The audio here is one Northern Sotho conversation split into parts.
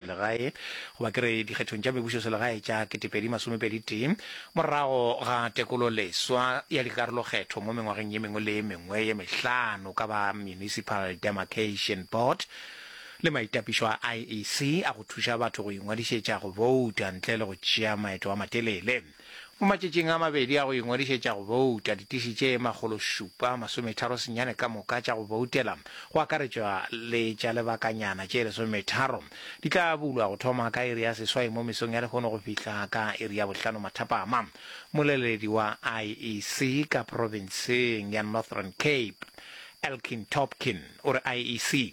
legae goba ke re dikgethong tša mebušoselegae tša ketepedi masomepedi tee morago ga tekololeswa ya dikarolokgetho mo mengwageng ye mengwe le ye mengwe ye mehlano ka ba Municipal Demarcation Board le maitapišo a IEC a go thuša batho go ingwadišetša go bouta ntle le go tšea maeto a matelele. Mo matšatšing a mabedi a go ingwadišetša go bouta, ditiši tše makgolo šupa masometharo senyane ka moka tša go boutela, go akaretšwa le tša lebakanyana tše lesometharo, di tla bulwa go thoma ka iri ya seswai mo mesong ya lehono go fihla ka iri ya bohlano mathapama. Moleledi wa IEC ka profenseng ya Northern Cape, Elkin Topkin, o re IEC,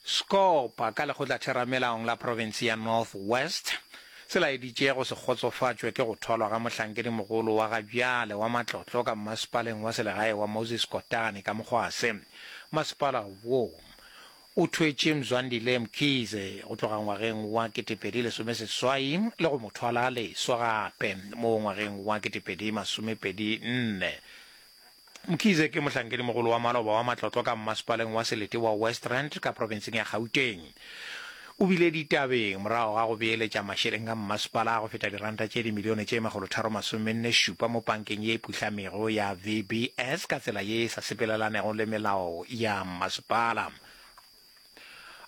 Sekgopa ka Lekgotlatheramelaong la Profense ya North West se laeditše go se kgotsofatšwe ke go thwalwa ga mohlankedimogolo wa ga bjale wa matlotlo ka mmasepaleng wa selegae wa Moses Kotane ka Mokgwase. Masepala wo o thwetše Mzwandile Mkhize go tloga ngwageng wa ketepedi lesome seswai le go mo thwala leswa gape mo ngwageng wa ketepedi masomepedi nne Mkhize ke mohlankedimogolo wa maloba wa matlotlo ka mmasepaleng wa Selete wa West Rand ka profenseng ya Gauteng. O bile ditabeng morago ga go beeletša mašeleng a mmasepala a go feta diranta tše dimilione tše makgolotharo masomenne šupa mo pankeng ye e puhlamego ya VBS ka tsela ye e sa sepelelanego le melao ya mmasepala.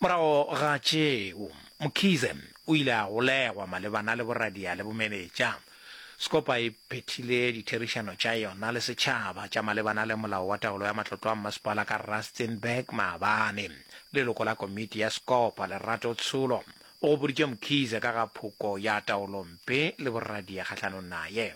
Morago ga tšeo, Mkhize o ile a golegwa malebana le boradia le bomenetša. Scopa e phethile ditherišano tša yona le setšhaba tša malebana le molao wa taolo ya matlotlo a mmasepala ka Rustenburg maabane. Leloko la komiti ya Scopa, Lerato Tsholo, o gopoditše Mkhize ka ga phoko ya taolompe le boradia kgahlanong naye.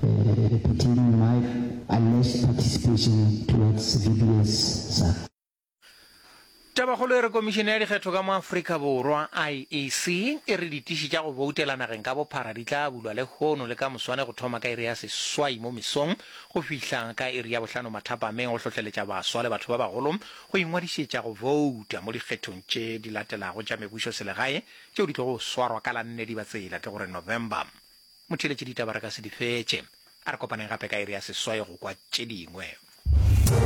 Between Mike a less participation towards VBS sa. Tabakgolo e re Komišene ya Dikgetho ka mo Afrika Borwa, IEC, e re ditiši tša go boutela nageng ka bophara di tla bulwa lehono le ka moswane go thoma ka iri ya seswai mo mesong go fihla ka iri ya bohlano mathapameng go hlohleletša baswa le batho ba bagolo go ingwadišetša go bouta mo dikgethong tše di latelago tša mebušoselegae tšeo di tlogo swarwa ka la nne di ba tsela ke gore November Motheeletši ditaba re ka se di fetše. A re kopaneng gape ka iri ya seswai go kwa tše dingwe.